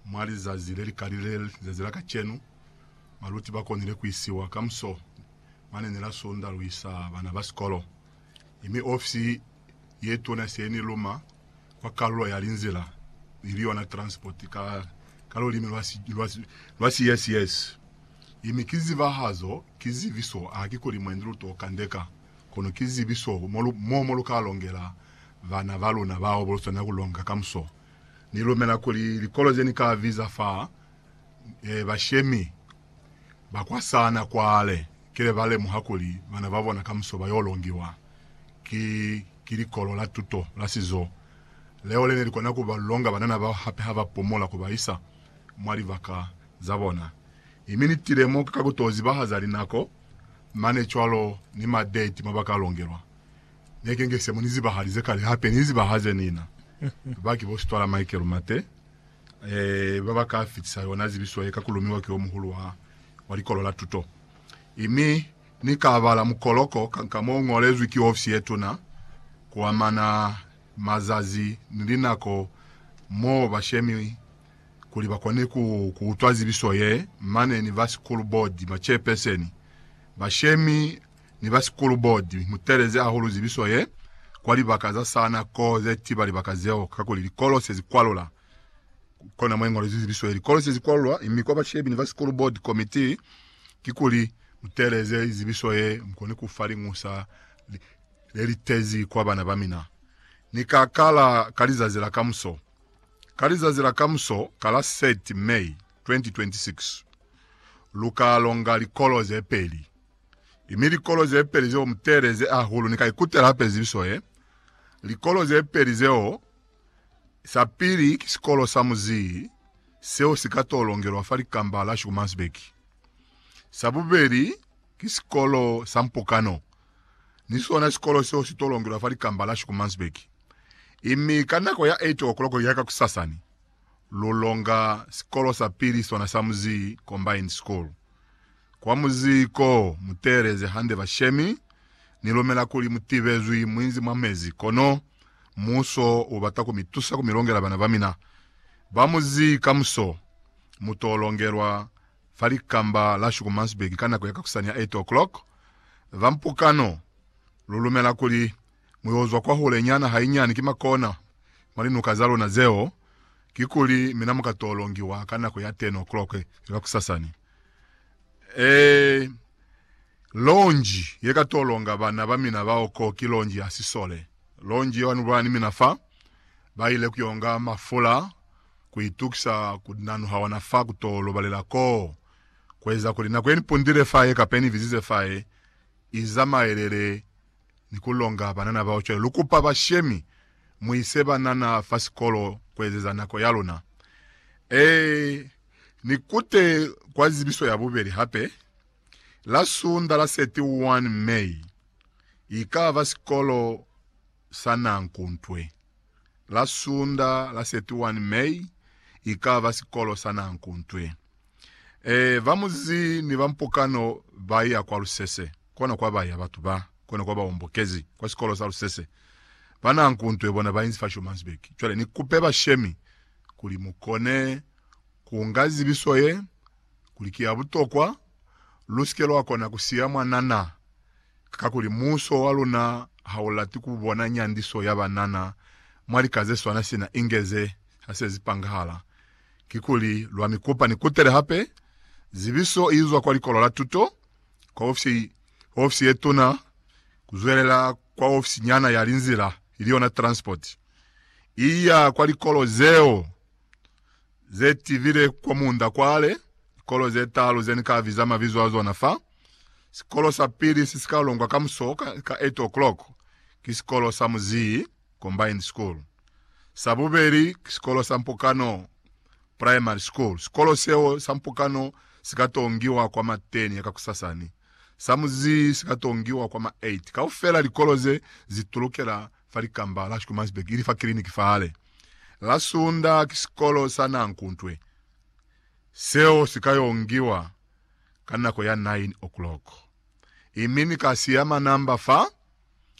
Mwa lizazi le li kalile le lizazi la kacenu, baluti ba konile ku isiwa ka muso mane ne la sundaluisa bana ba sikolo. Mi ofisi ye tuna se ni luma kwa kalulo ya linzila, ili yona transport ka, ka lulimi lwa si, lwa, lwa si yes yes. Mi ki zibahazo, ki zibiso, a ki kuli mwendi lu to kandeka, kono ki zibiso mo lu, mo, mo lu ka longela bana ba luna bao bo lu swanela ku longa ka muso. Ni lumela kuli likolo ze ni ka biza fa e, bashemi ba kwa sana kwale kile ba lemuha kuli bana ba bona kamuso ba yo longiwa ki, ki likolo la tuto la sizo leo le ne li kona ku ba longa banana bao hape ha ba pumula ku ba isa mwa libaka za bona. I mi ni tile mo ka ku to zibahaza linako mane cwalo ni madeti mo ba ka longelwa. Neke nge se mu ni zibahalize kale hape ni zibahaze nina. Ba ki bo Sitwala Michael Mate, eh, ba ba ka fitisa yona zibiso ye ka ku lumiwa ki omuhulu wa, wa Likolo la Tuto. I mi Ni ka bala mukoloko ka, ka mo ngolezwi ki ofisi ye tuna, ku amana mazazi ni linako mo ba shemi kuli ba kone ku, ku utwa zibiso ye, mane ni ba Sikulu Bodi, ba Chairperseni, ba shemi, ni ba Sikulu Bodi mu teelezi hahulu zibiso ye kwa libaka za sana ko ze tiba libaka zeo, kakuli likolo se zikwalula ku kona mwe ngolezwi zibiso ye likolo se zikwalulwa, mi kwa bashebi ni ba Sikulu Bodi Komitii kikuli mu teeleze zibiso ye mu kone ku fa liñusa le le litezi kwa bana ba mina. Ni ka kala ka lizazi la kamuso, ka lizazi la kamuso ka la 30 May 2026, lu ka longa likolo ze peli. Mi likolo ze peli zeo mu teeleze hahulu, ni ka ikutela hape zibiso ye. Likolo ze peli zeo, sa pili ki sikolo sa muzii seo si ka to longelwa fa likamba la Schoemannsburg. Sa bubeli ki sikolo sa mpokano, ni sona sikolo seo si to longelwa fa likamba la Schoemannsburg. I mi ka nako ya eight o'clock ya kakusasa ni lu longa sikolo sa pili sona sa muzii, Combined School. Kwa muziko, muteeleze hande bashemi. Ni lumela kuli mutibezwi muinzi mwa mezi, kono muuso ubata ku mitusa ku milongela bana bamina ba muzi. Kamuso, muto longelwa fa likamba la Schumansberg ka nako ya kakusani ya 8:00 ba mpukano. Lu lumela kuli mu yo zwa kwahule nyana hainyani ki makona mwa linuka za luna zeo, kikuli mina mu ka to longiwa ka nako ya 10 o'clock ya kakusasani. Ee, lonji ye ka to longa bana ba mina bao ko ki lonji ya sisole. Lonji yeo anubulana ni mina fa, ba ile ku yo nga mafula ku itukisa ku nanuha ona fa ku to lobalela koo, ku eza kuli nako ye ni pundile fa ye kape ni bizize fa ye i zamaelele ni ku longa banana bao cwale. Lu kupa bashemi mu ise banana fa sikolo ku ezeza nako ya luna. Ee, ni kute kwa zibiso ya bubeli hape, la Sunda la 31 May, i ka ba sikolo sa nanku ntwe. La Sunda la 31 May, i ka ba sikolo sa nanku ntwe. Ee, ba muzi ni ba mpokano ba ya kwa lusese. Kona kwa ba ya batu ba, kona kwa ba ombokezi kwa sikolo sa lusese. Ba na nku nto ye bona ba inzi fa Schommansberg. Cwale ni kupe bashemi kuli mu kone ku nga zibiso ye, kuli ki ya butokwa, lu si ke lwa kona ku siya mwana na, kakuli muuso wa luna ha u lati ku bona nyandiso ya banana mwa lika ze swana sina inge ze ha se zi pangahala. Kikuli lwa mi kopa ni kutele hape zibiso inzwa kwa Likolo la Tuto, kwa ofisi, kwa ofisi ye tuna, kuzwelela kwa ofisi nyana ya linzila, ili yona transport, iya kwa likolo zeo ze tibile kwa munda kwale, likolo ze talu ze ni ka biza mabizo a zona fa. Sikolo sa pili se si ka longwa kamuso ka, ka eight o'clock, ki sikolo sa muzii. Combined School. Sa bubeli ki sikolo sa Mpokano Primary School. Sikolo seo sa Mpokano si ka tongiwa kwa ma 10 ya kakusasa ni sa muzii si ka tongiwa kwa ma 8. Kaufela likolo ze zi tulukela fa likamba la Schoemansberg ili fa kiliniki fa hale. La Sunda ki sikolo sa Nankuntwe seo si ka yongiwa ka nako ya 9 o'clock. Imini kasi ya manamba fa.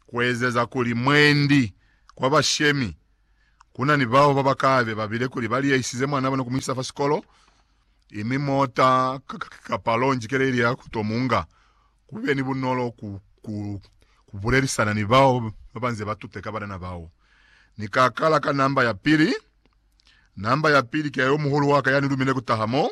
kuezeza kuli mwendi kwa bashemi kuna ni bao babakabe babile kuli baliyaisize mwana bona kumuisa fa sikolo, imi mota kapa lonji keleli ya kuto munga, kube ni bunolo ku, ku, kubulelisana ni bao babanze batute ka banana bao. Ni ka kala ka namba ya pili. Namba ya pili ki ya yomuhulu waka yani lumile kutaha mo.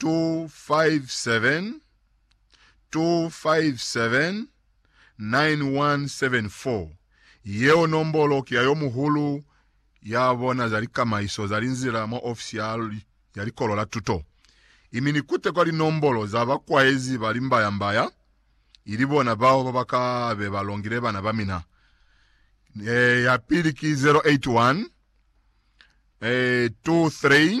257 257 9174. Yeo nombolo ki ya yo muhulu ya bona za likamaiso za linzila mwa ofisi ya ya Likolo la Tuto. Imi ni kutekwa linombolo za bakwaezi ba limbayambaya, ili bona bao ba ba ka be ba longile bana ba mina. E, ya pili ki 081 eh, 23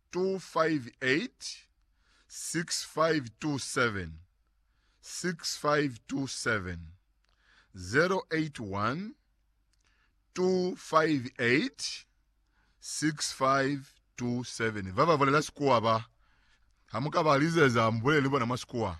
258 Ba ba bulela Sikuwa ba, ha mu ka ba lizeza, mu bulele ni bona mwa Sikuwa.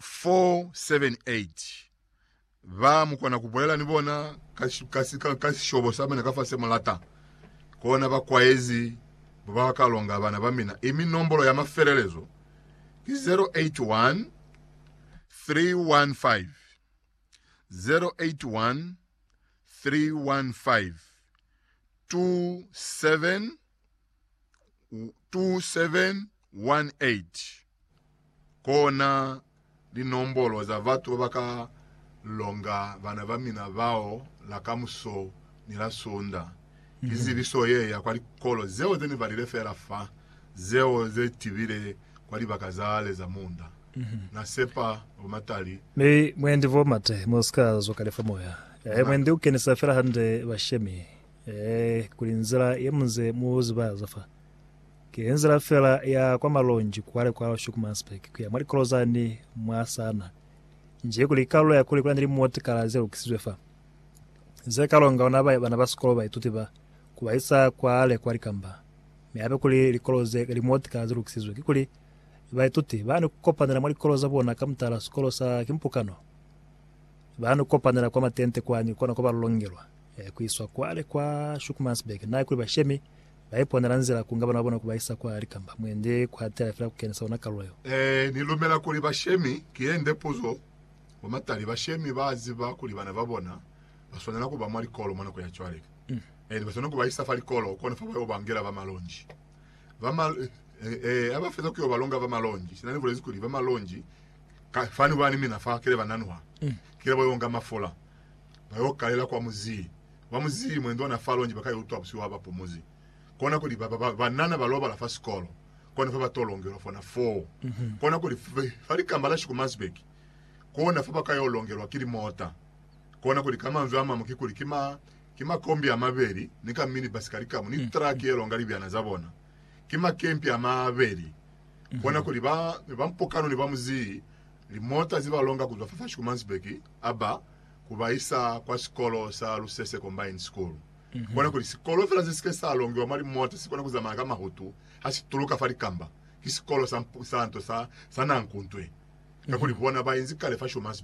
478 ba mu kona ku bulela ni bona ka, ka, ka, ka sishobo sa mina kafasi se mu lata, kona ba kwaezi ba ba ka longa bana ba mina. I mi nombolo ya mafelelezo ki 081 315 081 315 27 2718 kona linombolo za batu ba ba ka longa bana ba mina bao la kamuso ni la Sunda. Ki zibiso ye ya kwa likolo zeo ze ni balile fela fa, zeo ze tibile kwa libaka zale za munda. Na sepa bo Matali. Mi mwendi bo Mate, mu si ka zwa kale fa moya. Mwendi u kenisa fela hande bashemi. Ee, kuli nzila ye muze mu ziba ya za fa, ki nzila fela ya kwa Malonji kwale kwa Schoenemannsberg kuya mwa likolo zani mwa sana. Nji kuli kalulo ya kuli kuna ni limotikala ze lukisizwe fa, ze ka longa ona ba, bana ba sikolo, baituti ba, ku ba isa kwale kwa likamba. Mi hape kuli likolo ze, limotikala ze lukisizwe, kikuli baituti ba ni ku kopanela mwa likolo za bona ka mutala sikolo sa kimpukano. Ba no kopanela kwa matente kwani kona ko ba lolongelwa ku iswa kwale kwa Schoenemannsberg. Na ikuli bashemi ba iponela nzila ku nga bana ba bona ku ba isa kwale kamba mwendi ku hatela fela ku kenisa ona kalulo yo. Ee, ni lumela kuli bashemi ki yende puzo. Bo matali bashemi ba ziba kuli bana ba bona ba swanela ku ba mwa likolo mwa nako ya cwale. Ee, ni ba swanela ku ba isa fa likolo kona fa ba yo bangela ba malonji. Ba ma, ee, ha ba feza ku yo ba longa ba malonji, sina ni bulezi kuli ba malonji Ka fani ba ni mina fa kile ba nanuha, kile ba yo nga mafula, ba yo kalela kwa muzii. Ba muzii mwe ndona fa longi ba ka utwa busihu ha ba pumuzi. Kona kuli ba ba banana ba lobala fa sikolo, kona fa ba to longelwa fona foo. Kona kuli fa likamba la Schoemansberg, kona fa ba ka yo longelwa ki limota. Kona kuli ka manzwi a mamu ki kuli ki ma, ki makombi a mabeli ni ka minibasi ka likamu ni traki ye longa libyana za bona. ki makempi amabeli, kona kuli ba ne ba mpokano ne ba mu zii limota ze ba longa kuzwa fa fa Schoemansberg a ba ku ba isa kwa sikolo sa Lusese Combined School. Kona kuli sikolo fela se si ke sa longiwa mwa limota si kona ku zamaya ka mahutu ha si tuluka fa likamba, ki sikolo sa, sa nto sa, sa Nankuntwe, kakuli bona ba inzi kale fa Schoemansberg.